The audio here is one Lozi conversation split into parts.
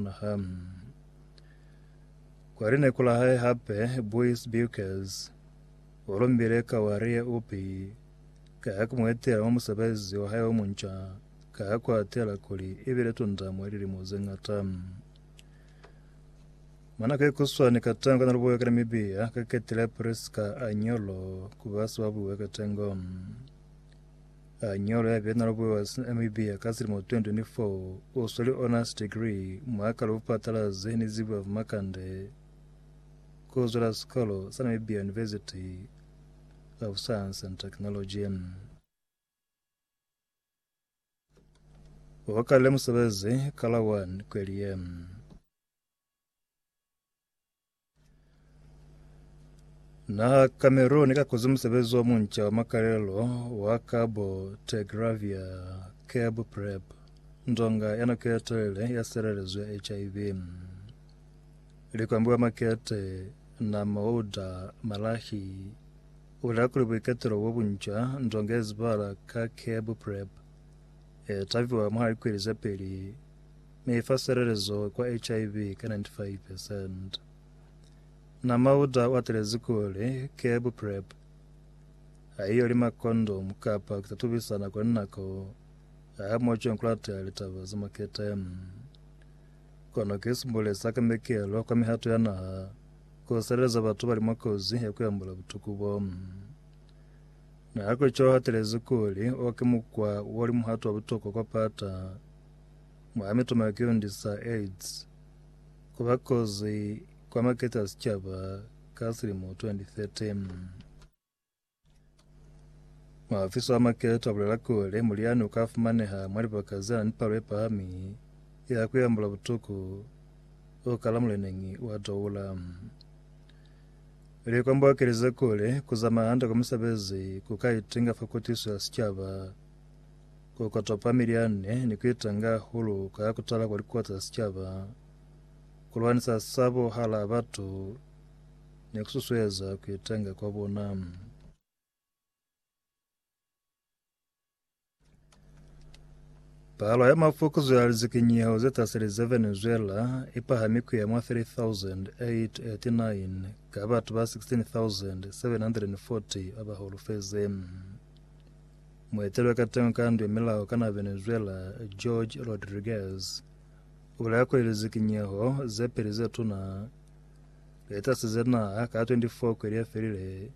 Naha. Kwa lineko la hae hape, Bois Bukers o lombile ka wa lia upi ka ya ku mu etela mwa musebezi wa hae o munca ka ya ku atela kuli i bile tunda mwa lilimo ze ñata. Mwa nako ye kuswani ka tango na lubuwe ka Namibia, ka ketile Prisca Anyolo ku ba sibabuwe ka tango. A nyolo ya Bernal Boas Namibia ka silimo 2024 o sweli honors degree mwa ka lupatalazi ni zibuya fa Makande ku zwela sikolo sa Namibia University of Science and Technology. O kalile musebezi ka la 1 kweli ye. Na Cameroon ka kozi musebezi wa munca wa makalelo wa Cabo Tegravia Cab Prep nzonga ya nako ya telele ya serelezo ya HIV likwambiwa makete na mauda malahi ula kuli buiketelo bo bunca nzonga ya zibala ka Cab Prep e taviwa mwa likweli za peli ne ifa silelezo kwa HIV ka 95 percent. Na mauta o atelezi kuli kebu PrEP haiyo li makondomu kapa ku tatubisana kwa linako ha mo cweng kulata litaba za makete. Kono ki sibule sa kamekelo kwa mihato ya naha ku sileleza batu bali mwa kozi ya ku ambola butuku bo. Na ha ku cwalo hatelezi kuli o ki mukwa o li muhato wa butokwa kwa pata mwa mitumakiundi sa AIDS ku ba kozi kwa makete a sicaba ka silimo 2013. Muhafisi wa makete a bulela kuli mulyani u ka fumaneha mwa libaka ze na ni palo ye pahami ya ku yambula butuku u kala muleneñi wa Doula. Likomba u kelize kuli ku zamaya hande kwa misebezi ku ka itinga fa kutiso ya sicaba. Ku kota pamili ya nne ni ku itanga hahulu ka ya ku tala kwa likuwa za sicaba, ku lwanisa sabo hala batu, ni ku susueza ku itanga kwa bona. Palo ya mafukuzo ya lizikinyeho ze taseli za Venezuela i pahami ku ya mwa 3,889 ka batu ba 16,740 ba ba holofeze. Muetelwa ka teño ka ndwe milao kana Venezuela, George Rodriguez, ubulela kuli lizikinyeho zepeli zetuna lietasize naha ka 24 kweli yefelile,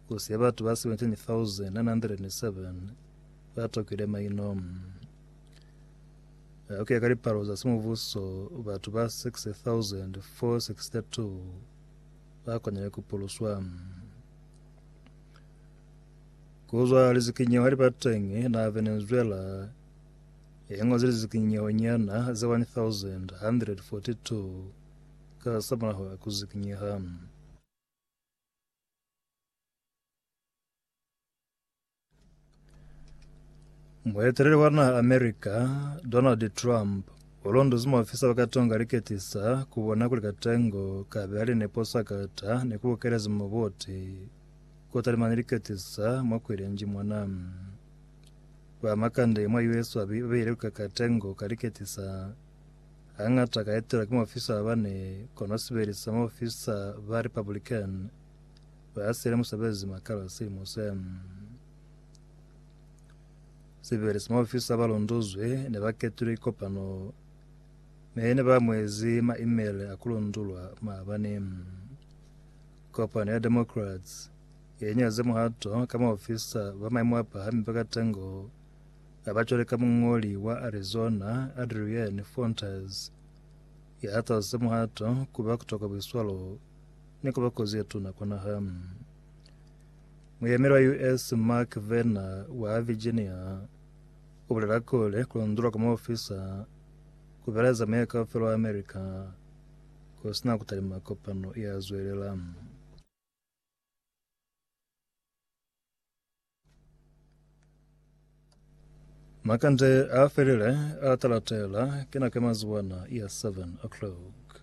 kusiye batu ba 17,907 batokile maino. Kuya ka lipalo za semubuso, batu ba 60,462 bakonile kupuluswa. Ku zwa lizikinyeho hali ba teñi, na be ni zwela ye ñozi lizikinyeho nyana ze 1,142 ka sa mulaho wa ku zikinyeha. Mueteleli wa naha America, Donald Trump, u londozi maofisa ba ka tonga liketisa ku bona kuli katengo ka be ali nepo sa kata ni ku bukelezi muboti Kota lima ne li katisa mwa kwelenji mona. Ba makande mwa US ba beile lukaka tengo ka liketisa. Hangata ka etelwa ki maofisa ba bane, kono sibeli sa maofisa ba Republican ba sele musebezi makalo silimo se. Sibeli sa maofisa ba londozwe ne ba ketulwe kopano me ne ba mwezi ma email a kulondulwa maabane. Kopano ya Democrats ye nyaze muhato ka maofisa ba maimo a pahami ba katengo a ba cwale ka muñoli wa Arizona Adrienne Fontes ya hatazize muhato ku ba kutokwa buiswalo ni ku ba kozi ye tuna kwa naha. Muyemeli wa US Mark Verner wa Virginia u bulela kuli ku londolwa kwa maofisa ku beleza meya kaufela wa America. Ku sina ku talima kopano ye a zwelelang. Makande a felile a talatela, ki nako ya mazuwana ya 7 o'clock.